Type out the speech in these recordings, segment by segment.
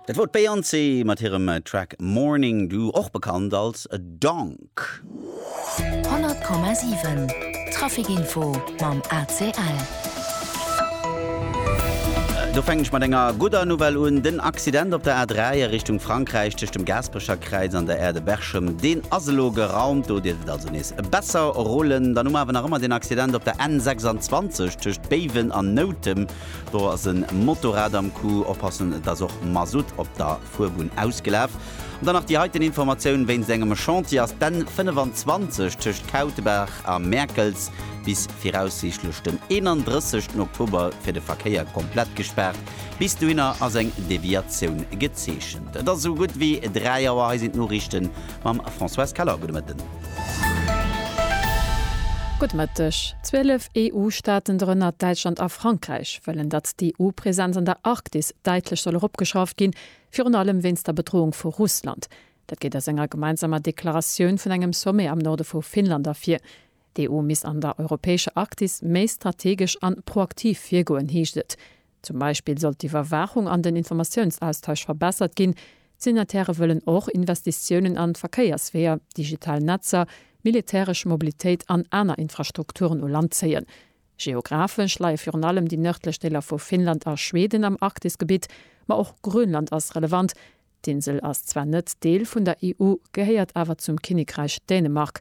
Dat wor d'Beyoncé mat hirem Track Morning Dew, och bekannt als Donk. 100,7 Trafic Info mam ACL. Do fänken ech mat enger gudder Nouvelle un. Den Accident op der A3 a Richtung Frankräich tëscht dem Gaasperecherkräiz an der Aire de Berchem, deen ass elo geraumt. Do dierft et also nees besser rullen. Dann hu mer awer nach ëmmer den Accident op der N26 tëscht Béiwen an Noutem. Do ass e Motorrad am Coup, oppassen, et ass och Masutt op der Fuerbunn ausgelaf. An dann nach déi heiten Informatioun wéinst engem Chantier ass d'N 25 tëscht Kautebaach a Mäerkels bis viraussiichtlech den 31 ten Oktober fir de Verkéier komplett gespaart. Bis dohinner ass eng Deviatioun gezeechent. Et ass esou gutt wéi 3 Auer, hei sinn d'Noriichten mam Françoise Keller. Gudde Mëtten. Gudde Mëtteg. 12 EU-Staaten, dorënner Däitschland a Frankräich, wëllen, datt d'EU-Presenz an der Arktis däitlech soll eropgeschrauft ginn, virun allem wéinst der Bedroung vu Russland. Dat geet aus enger gemeinsamer Deklaratioun vun engem Sommet am Norde vu Finnland ervir. D'EU misst an der europäescher Arktis méi strategesch an proaktiv virgoen, heescht et. Zum Beispill soll d'Iwwerwaachung an den Informatiounsaustausch verbessert ginn. D'Signatairë wëllen och Investitiounen an d'Verkéiersweeër, digital Netzer, militäresch Mobilitéit an aner Infrastrukturen u Land zéien. Geographesch leie virun allem déi nërdlech Deeler vu Finnland a Schweden am Arktisgebitt, ma och Grönland ass relevant. D'Insel ass zwar net Deel vun der EU, gehéiert awer zum Kinnekräich Dänemark.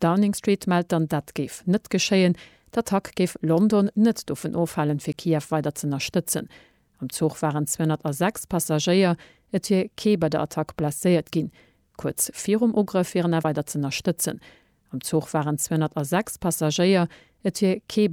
Downing Street mellt dann, dat géif net geschéien. D'Attack géif London net dovun ofhalen, fir Kiew weider z'ënnerstëtzen. Am Zuch waren 206 Passagéier. Et wier kee bei der Attack blesséiert ginn. Kuerz virum Ugrëff wieren awer weider z'ënnerstëtzen. Am Zuch waren 206 Passagéier. Et wier kee.